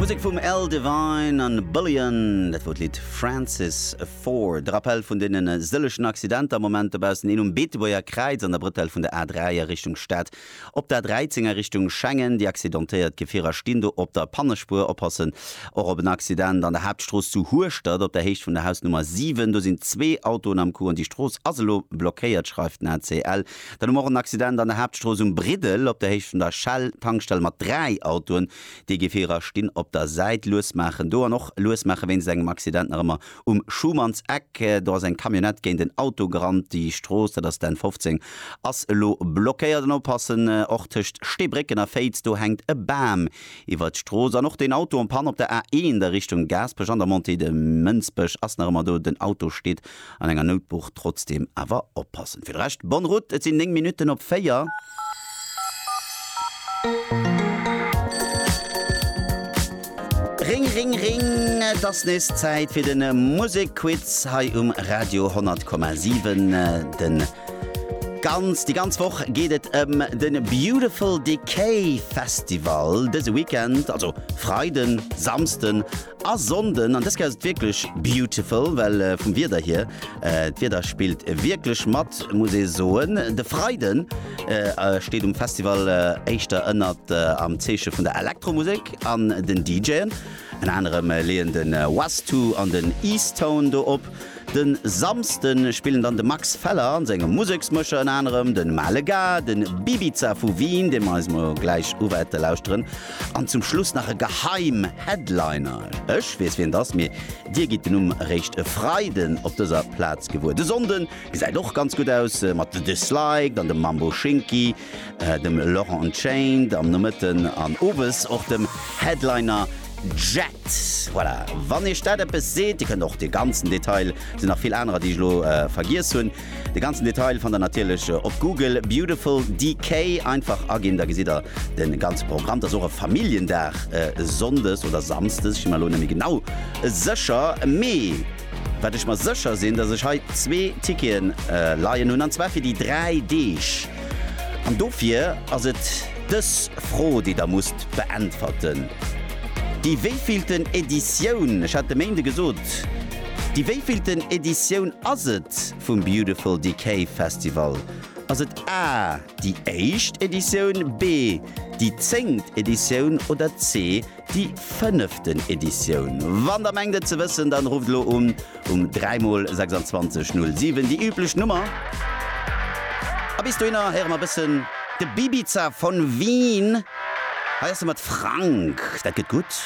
Musek vum Al Devine an Bullion, dat wor d'Lidd Francis Ford. De Rappell vun deenen sëllegen Accidenter am Moment dobaussen, een um Beetebuerger Kräiz an der Brëtell vun der A3 a Richtung Stad, op der A13 a Richtung Schengen. Déi accidentéiert Gefierer stinn do op der Pannespuer. Oppassen och op en Accident an der Haaptstrooss zu Hueschtert op der Héicht vun der Hausnummer 7. Do sinn zwee Autoen am Coup an déi Strooss ass elo blockéiert, schreift den ACL. Dann hu mer och en Accident an der Haaptstrooss um Briddel, op der Héicht vun der Shell-Tankstell, mat dräi Autoen, déi Gefierer stinn op der Säit, luesmaachen do an och luesmaache wéinst engem Accident nach ëmmer um Schumannseck. Do ass eng Camionnette géint en Auto gerannt. Déi Strooss, dat ass d'N 15, ass elo blockéiert. An oppassen och tëscht Steebrécken a Féiz, do hänkt e Bam iwwert d'Strooss. An och den Auto en Panne op der A1 a Richtung Gaasperech an der Montée de Mënsbech ass nach ëmmer do, den Auto steet An enger Noutbuch trotzdeem awer oppassen. Fir de Rescht bonne route, et sinn 9 Minutten op 4. Ring ring ring, et ass nees Zäit fir den Musekquiz hei um Radio 100,7. Den ganz, déi ganz Woch geet et ëm den Beautiful Decay Festival dëse Weekend, also Freiden, Samsden A Sonnden, an dës Kéier ass et wierklech beautiful, well vum Wieder hier, d'Wieder spillt wierklech mat, muss ee soen. De Freiden steet um Festival éischter ënnert am Zeeche vun der Elektromusek an den DJen. Ënner anerem leeën de Westoo an den Eastone do op. De Samsde spillen dann de Max Feller an senge Museksmëscher, ënner anerem de Male Ga, de Bibiza vu Wien, dee mer eis mol gläich uwäerte lauschteren, An zum Schluss nach e Geheim Headliner. Ech weess wien et ass, mee dir gitt den Numm eréischt e Freiden op dëser Plaz gewuer. De Sonnde gesäit och ganz gutt aus, mat The Disliked an dem Mambo Shinky, dem Laurent Unchained am Nomëtten an owes och dem Headliner Jett. Voilà, wann iech dat eppes seet. Dir kënnt och de ganzen Detail, et sinn nach vill anerer déi ech elo vergiess hunn, De ganzen Detail fannt der natierlech op Google, Beautiful DK einfach aginn, da gesitt der de ganze Programm. Et ass och e Familljendag, sonndes oder samsdes, ech si mer elo net méi genau sécher. Mee wat ech mer sécher sinn, datt ech hei zwee Tickete leien hunn, an zwar fir déi dräi Deeg. An dofir ass et dës Fro, déi der musst beäntwerten, Déi wéivielten Editioun? Ech hat de Méinde gesot, Déi wéivillten Editioun ass et vum Beautiful Decay Festival? Ass et A, Déi éischt Editioun, B, Déi zéngt Editioun oder C, Déi fënneften Editioun? Wann der mengt et ze wëssen, dann rufft elo un um 3 mol 26 07, déi üblech Nummer. A bis dohinner héiere mer bëssen de Bibiza von Wien. Hei ass e mat Frank. Dat gëtt gutt.